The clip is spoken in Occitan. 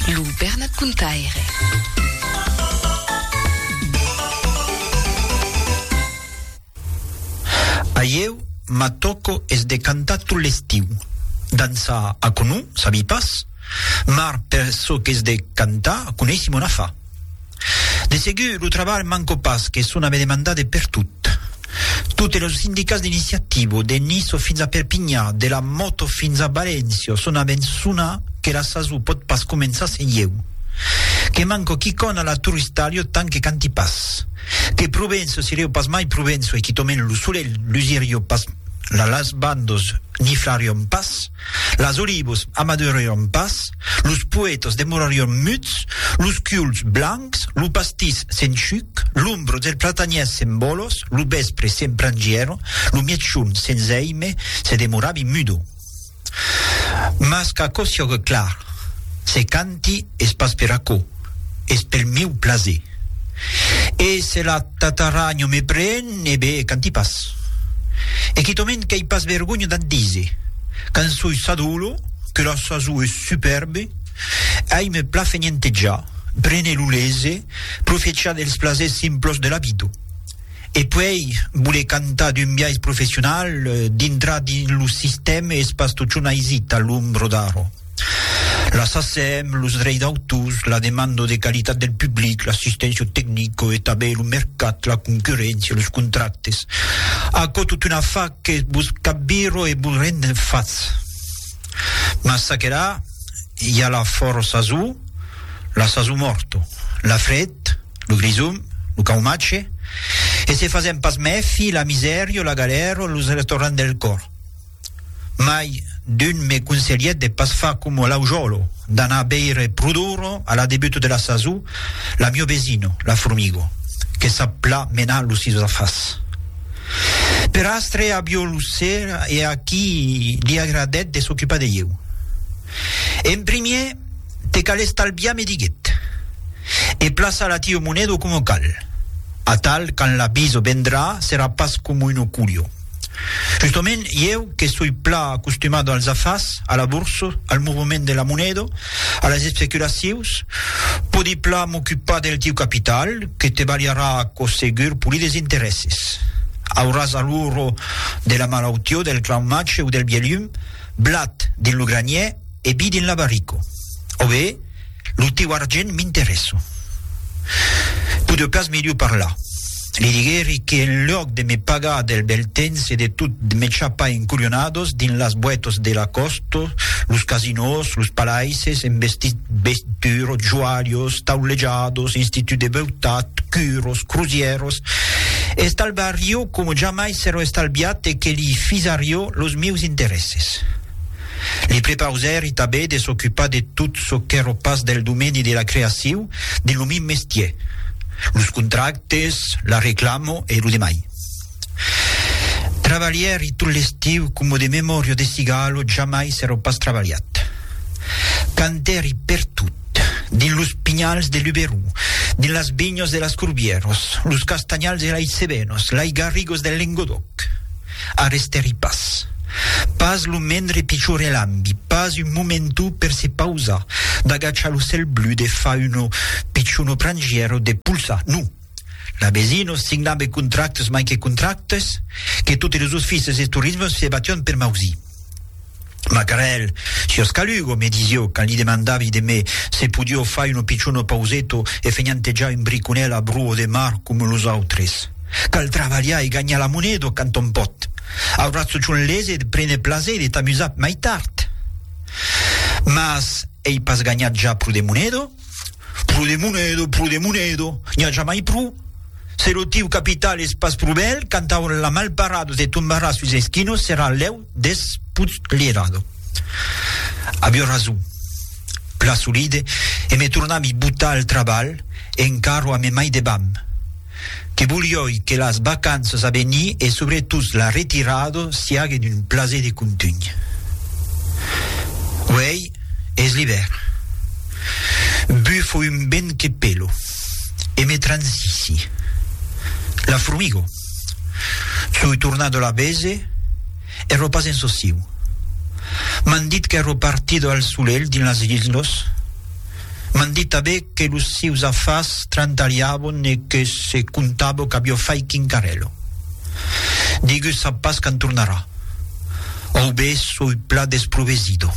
Lo Bernat Contaire. Ahieu m'atòco es de cantar tot l'estiu. Dançar, aquò non, sabi pas. Mar per çò qu'es de cantar, coneissi mon afar. De segur, lo trabalh manco pas que son a me demandar de pertot. Totes los sindicats d'iniciativo, de Niço fins a Perpinha, de la moto fins a Valencia, son a me'n sonar que la sasó pòt pas començar sen ieu. Que manco quicòna a la Turistalio tant que canti pas. Que Provenço sirió pas mai Provenço e quitòment lo solelh lusiríó pas, la las bandos niflarión pas. Las olivos amadurarion pas, los poetos demorarion muts, los culs blancs, lo pastís s'enchuc, l'ombro del platanièr s'embolos, lo vèspre s'emprangièron, lo mièchon sens èime se demoravi mudo. Mas qu'aquò siògue clar, se canti es pas per aquò. es pel miu plaser. E se la tataragno me pren, e be, quand ti pas. E quitòment qu'ei pas vergonha d'a't díser, quand soi sadolo, que la saso es superbe, ai me plafenientejar, prene lo lese, profechar dels plasers simplos de la vida. E puei voler cantar d'un biais professional, dintrar dins lo sistème es pas totjorn aisit a l'ombra d'aro. La SACEM, los dreis d'autors, la demanda de qualitat del public, l'assisténcia tecnica e tanben lo mercat, la concurréncia, los contractes. Aquò tot una fa que vos capvira e vos rend en fat. Mas çaquelà, i a la fòra sasó, la sasó mòrta, la fred, lo grisum, lo caumatge, e se fasèm pas mèfi, la misèria, la galèra, los retornan del còr. Mai d'un me conselhèt de pas far coma l'aujòlo, d'anar veire pro d'ora, a la debuta de la sason, la mio vesina, la formiga, que sap pla menar los sis afars. Per astre a Biolosera e a qui li agradèt de s'ocupar de ieu. En primièr, te cal estalviar, me diguèt, e plaçar la tia moneda coma cal. Atal, quand la bisa vendrà, serà pas coma una culha. Justament, ieu que soi plan acostumado als afars, a la borsa, al movement de la moneda, a las especulacius, podi plan m'ocupar del tiu capital, que te balharà aquò segur poli des interèsses. Auràs aluro de la malautió del clau mace o del bielum, blat dins lo granièr e bi dins l'abarico. Ove? Lo teu argent m'interessa. Pode pas melhor parlar. Li diguèri que en luòc de me pagar del bèl temps e de tot me chapar en colhonados dins las boetas de la còsta, los casinòs, los palaisses en vestit beitura, joalhos, taulejados, institut de beutat, curos, crusièras, estalbarió coma jamai s'èra estalbiat e que li fisarió los mieus interèsses. Li prepausèri tabé de s'ocupar de tot çò qu'èro pas del domeni de la creaciu de lo min mestier, los contractes, la reclamo e lo demai. Travalhèri tot l'estiu coma de memòria de cigalo jamai s'èro pas travalhat. Cantèri pertot, dins los pinhals de Luberó, dins las vinhas de las Corbièras, los castanhals de Laicebenos, lais garrigos del Lengodòc. arrestèri pas. Pas lo mendre pichorelambi, pas un momentu per se pausar, d'agachar lo cèl blu, de far uno pichono prangièr o de polsar, non! L'abesino signabe contractes mai que contractes, que totes los oficis e torismes se batián per mausir. Macarèl, siós calugo, me disió, quand li demandavi de me se podió far uno pichon pauseto e fenhantejar un briconèl a bruo de mar com los autres. Cal travalhar e ganhar la moneda quand on pòt. Auratz chon lese de prene plaser de t'amusar mai tard. Mas ei pas ganhat ja pro de moneda? Pro de Monedo, pro de Monedo, n'i a jamai pro. Se lo tiu capital es pas pro bèl, quand aura la malparado te tombarà sus es quinos serà lèu despotlherado. Avió rason. Plasolide e me tornavi botar al trabalh e encarro a me mai debam. que volioi que las vacanças a venir e subretot la retirada siague d'un plaser de contunh. Uèi es l'ivèrn. Bufo un vent que pelo e me transissi. La formigo. Soi tornat de la bese, ero pas en sociu. M'an dit qu'ero partida al solelh dins las hilhnos. M'an dit tanben que los sieus afars trantariavon e que se comptavo qu'avió fait quincarello. Digu sap pas quand tornarà. Au be soi pla desprovesido.